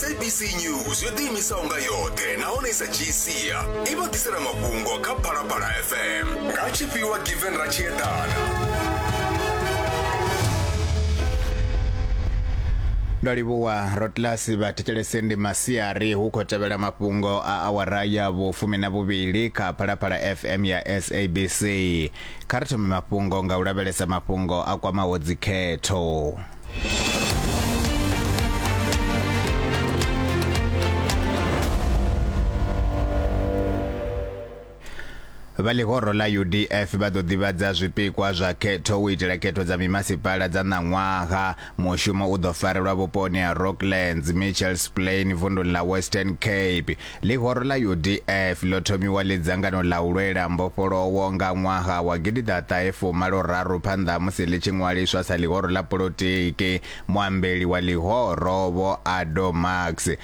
sabc news yo ḓiimisaho nga yoṱhe nahone i sa dzhii sia i vha ḓisela mafhungo kha phalaphala fm nga tshifhiwa given ra tshi eḓana ndo livhuwa rotlas vhathetshelese ndi masiari hu khou tevhela mafhungo a awara ya vhufumi na vhuvhili kha phalaphala fm ya sabc Kha ri thome mafhungo nga u lavhelesa mafhungo a kwamaho dzikhetho. vha ḽihoro ḽa udf vha ḓo ḓivhadza zwipikwa zwa khetho u itela khetho dza mimasipala dza ṋaṅwaha Mushumo u ḓo farelwa vhuponi ha Rocklands, Mitchells Plain, vunduni ḽa Western Cape. Ḽihoro ḽa UDF ḽo thomiwa ḽi dzangano ḽa u lwela mbofholowo nga ṅwaha wa gidiḓaṱahe fumalo-raru phanḓa ha musi ḽi tshi ṅwaliswa sa ḽihoro ḽa polotiki. Muambeli wa ḽihoro, Vho Ado Marx,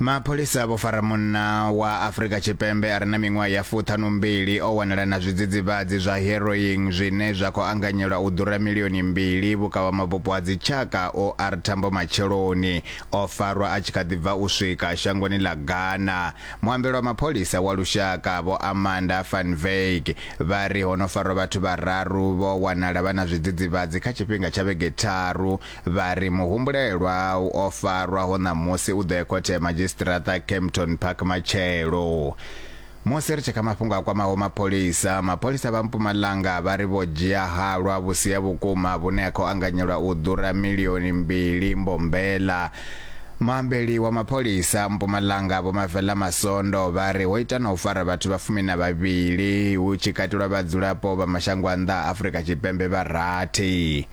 mapholisa vho fara munna wa afrika tshipembe a re na miṅwaha ya fuṱhanumbili o wanala na zwidzidzivhadzi zwa heroin zwine zwa khou anganyelwa u ḓura milioni mbili vhukavha mabupo a dzitshaka o r thambo matsheloni o farwa a tshi kha ḓi bva u swika shangoni ḽa ghana muambelo wa mapholisa wa lushaka vho amanda fanveg vha ri ho no farwa vhathu vhararu vho wanala vha na zwidzidzivhadzi kha tshifhinga tsha vhege tharu Vha ri muhumbulelwa o farwaho ṋamusi u ḓo e khothe ya madzhisiṱiraṱa Kempton Park matshelo. Musi ri tshekha mafhungo a kwamaho mapholisa, mapholisa vha Mpumalanga vha ri vho dzhia halwa vhusi ha vhukuma vhune ha khou anganyelwa u ḓura milioni mbili mbombela. Muambeli wa mapholisa Mpumalanga Vho Mavela Masondo vha ri ho ita na u fara vhathu vha fumi na vhavhili hu tshi katelwa vhadzulapo vha mashango a nnḓa a Afrika Tshipembe vha rathi.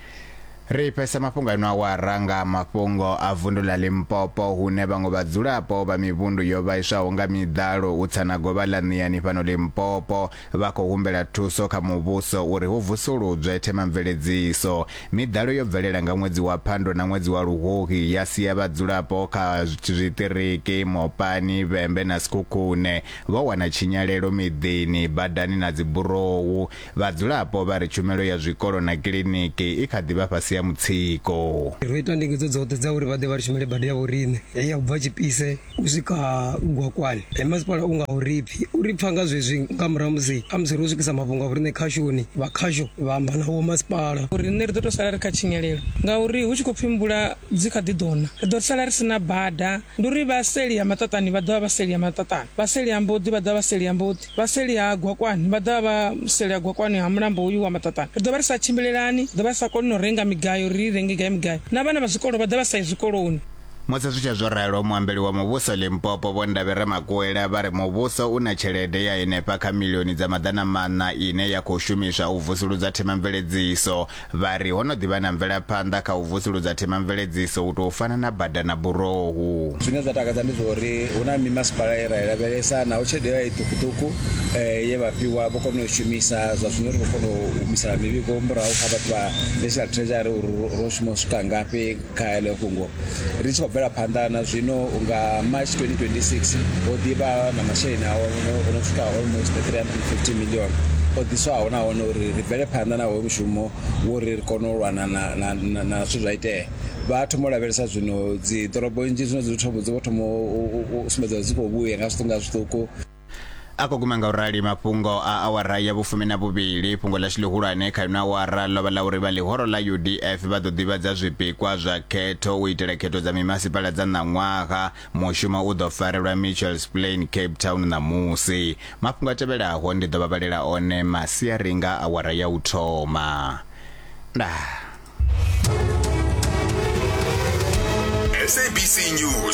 Ri pesa mafhungo a ino awara nga ha mafhungo a vundu ḽa Limpopo hune vhaṅwe vhadzulapo vha mivhundu yo vhaiswaho nga miḓalo u tsa na govha ḽa Ṋiani fhano Limpopo vha khou humbela thuso kha muvhuso uri hu vusuludzwe themamveledziso. Miḓalo yo bvelela nga ṅwedzi wa Phando na ṅwedzi wa Luhuhi ya sia vhadzulapo kha zwiṱiriki Mopani, Vhembe na Sekhukhune vho wana tshinyalelo miḓini, badani na dziburowu. Vhadzulapo vha ri tshumelo ya zwikolo na kiḽiniki i kha ḓi vha fhasi ha mutsiko. Ro ita ndingedzo dzoṱhe dza uri vha ḓe vha ri shumele bada ya vhoriṋe heyi ya u bva Tshipise u swika Gwakwani. He masipala u nga u ri pfi u ri pfa nga zwezwi nga murahu ha musi ha musi ro swikisa mafhungo a vhoriṋe khashoni, vha khasho vha amba na vhomasipala. Riṋe ri ḓo tou sala ri kha tshinyalelo ngauri hu tshi khou pfi mvula dzi kha ḓi ḓo na, ri ḓo sala ri si na bada. Ndi uri vha seli ha maṱaṱani vha ḓo vha vha seli ha maṱaṱani, vha seli ha mboḓi vha ḓo vha vha seli ha mboḓi. Vha seli ha Gwakwani vha ḓovha vha seli ha Gwakwani ha mulambo hoyu wa Maṱaṱana. Ri ḓo vha ri sa tshimbilelani, ri ḓo vha ri sa koni na u renga migayo uri ri renge gai migayo, na vhana vha zwikolo vha ḓa vha sa yi zwikoloni. Musi zwi tshee zwo ralo, muambeli wa muvhuso Limpopo Vho Ndavhi Ramakuwela vha ri muvhuso u na tshelede ya henefha kha miḽioni dza maḓana maṋa ine ya khou shumiswa u vusuludza themamveledziso Vha ri ho no ḓi vha na mvelaphanḓa kha u vusuludza themamveledziso u tou fana na bada na burohu. Zwine zwa takadza ndi zwa uri hu na mimasipala ye ra i lavhelesa naho tshelede yo vha i ṱukuṱuku ye vha fhiwa vho kona u i shumisa. Zwa zwino ri khou kona u humisela mivhigo murahu kha vhathu vha National Treasury uri ro shuma u swika ngafhi. Kha heḽo fhungo, ri tshi khou bvela phanḓa na zwino, nga March 2026 ho ḓi vha na masheleni a o no swika almost 350 million o ḓiswaho nahone uri ri bvele phanḓa na hoyo mushumo wo ri ri kone u lwana na na na na zwithu zwa itea vha thoma u lavhelesa zwino dzi ḓorobo nnzhi zwino dzi thoma dzi vho thoma u sumbedza dzi khou vhuya nga zwiṱuku nga zwiṱuku a khou guma nga u rali mafhungo a awara ya vhufumi na vhuvhili fhungo ḽashu ḽihulwane kha ino awara ḽo vha ḽa uri vha ḽihoro ḽa udf vha ḓo ḓivhadza zwipikwa zwa khetho u itela khetho dza mimasipala dza ṋaṅwaha mushumo u ḓo farelwa mitchells plain cape town ṋamusi mafhungo a tevhelaho ndi ḓo vha vhalela one masiari nga awara ya u thoma ndaa SABC News